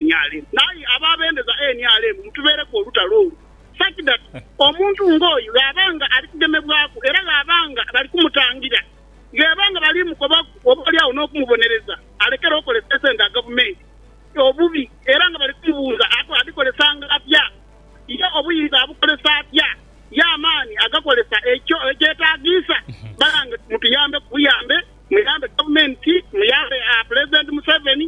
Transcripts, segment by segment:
NRM. Aye ababendeza nrm mutubeereku olutalo olwo such that omuntu nga oyo ghaba nga ali kugemebwaku era ghaba nga bali kumutangira, gheba nga bali mukobaku oba oli agho n'okumubonereza alekere okozesa esente dha gavumenti obubi era nga bali kumubuuza ati adhikozesanga atya, ye obuyinza abukozesa atya, ye amaani agakozesa ekyo ekyetagiisa? Banange mutuyambeku buyambe, muyambe gavumenti, muyambe Pulezidenti Museveni.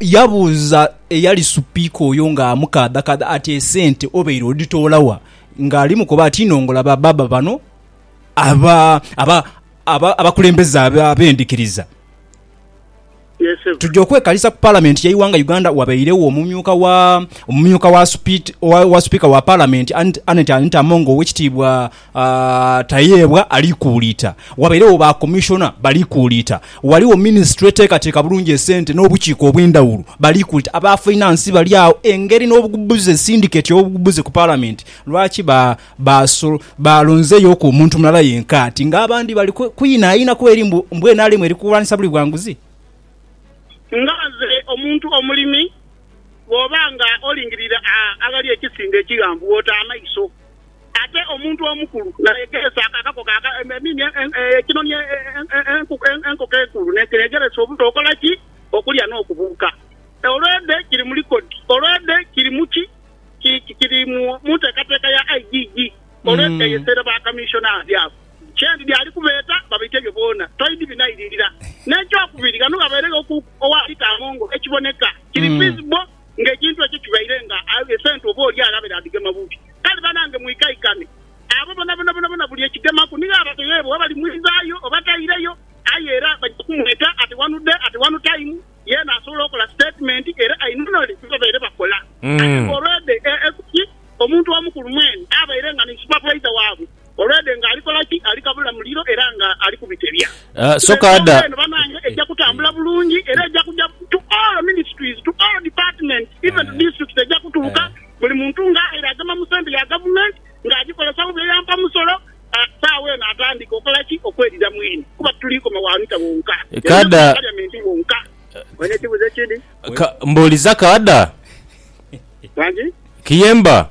Yabuuza eyali supiika oyo nga amukaadhakaadha ati esente obeire odhitoola wa? Nga ali mukoba ati nongola ba baba bano abakulembeze abendhikiriza. Tuja okwekalisa ku palamenti yeighanga Uganda wabeiregho omumyuka wa supiika wa palamenti Annet Among owekitiibwa Tayebwa ali kuuliita. Wabairegho ba Commissioner bali kuuliita. Ghaligho Ministry eteekateeka bulungi esente n'obukiiko obw'endhawulo bali kuuliita. Aba Finance bali agho. Engeri n'obugubuze, syndicate y'obugubuze ku Parliament, lwaki ba, ba, balonzeyoku omuntu mulala yenka ati nga abandi bali kwinhainha ku eri mbu, mbu nrm eri kulwanisa buli bwa nguzi? Nga nze omuntu omulimi, bw'oba nga olingirire aghali ekisimbe ekighanvu, bw'ota amaiso. Ate omuntu omukulu nayegeresa akako ka emini ekinoni enkoko enkulu nekiregeresa obuto okola ki? Okulya n'okubuuka. Olwedhe kiri mu likodi, olwedhe kiri mu ki? Kiri mu nteekateeka ya IGG. Olwedhe eyeseere ba kamishonaazi abo kyendidhi ali kubeeta babaite ebyo boona toidhi binairirira. N'ekyokubiri, ghano ghabeeregho ku owa lita amongo ekiboneka kiri visible ng'ekintu ekyo kibaire nga esente oba oli alabe dhaadhigema bubi. Kale banange mwikaikane. Abo bonabona bonabona buli ekigemaku nigho abateyeebwa oba balimwizaayo oba taireyo. Aye era baja kumweta at one day, at one time, yeena asobola okola statement era ainunule bye babaire bakola. Aye nga olw'edha esubi, omuntu omukulu mwene abaire nga ni supervisor waabwe. Olwedhe nga ali kola ki? Ali kabula muliro era nga ali kubitebya. Soka ada. Eno banange eja kutambula bulungi era eja kuja to all ministries, to all departments, even to districts eja kutuuka buli muntu nga aire agema mu sente ya government nga ajikozesa mu bye yampa musolo, saawa eno atandike okola ki? Okwedhira mwene kuba tituli koma wa Anita wonka, Kada. Wa parliament wonka. Olina ekibuzo ekindi? Ka, mbuliza Kada. Wangi. Kiyemba.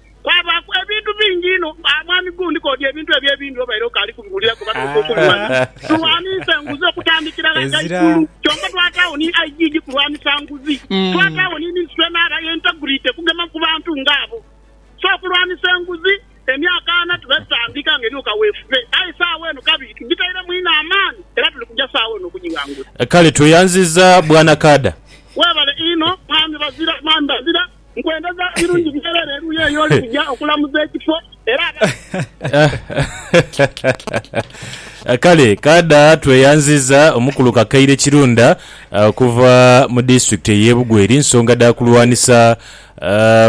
Kwabaaku ebintu bingi inho. Aah mwami Gu, ndiko odi ebintu ebyo ebindi obaire okaali kubiwulilaku oba n'ofa okubimanha. Tulwaniise nguzi okutandikira gha ghaigulu, kyonka twataagho ni IGG kulwanisa nguzi. Twataagho ni minisitule n'aba Integrity kugema ku bantu nga abo. So okulwanisa enguzi, emyaka ana tubaire tutandika nga eriku kaweefube, aye saagha eno kabiri tugitairemu inho amaani era tuli kuja saagha eno okugighangula. Kale tweyanziza Bwana Kaada. Webale inho Mwami Bazira, Mwami Bazira. Nkwenda za birungi byerere eruyi eyo oli kuja okulamuza ekifo era aba. Kale kaadha tweyanziza omukulu Kakaire Kirunda okuva mu disitulikiti ey'e Bugwe eri nsonga dha kulwanisa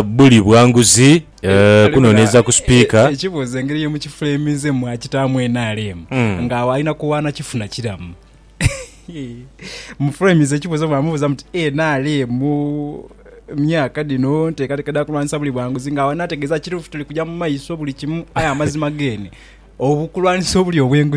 buli bwanguzi, kunoneeza ku sipiika. Ekibuuzo engeri ye mukifuleminzemu mwakitaamu nrm nga agho alina kuwaana kifuna kiramu? mu frames ekibuzo mwamubuza muti NRM myaka dhino ntekateka dha kulwanisa buli bwanguzi nga awo anategeza kitufu tuli kuja mu maiso buli kimu aye amazima gene obukulwanisa obuli obwenguzi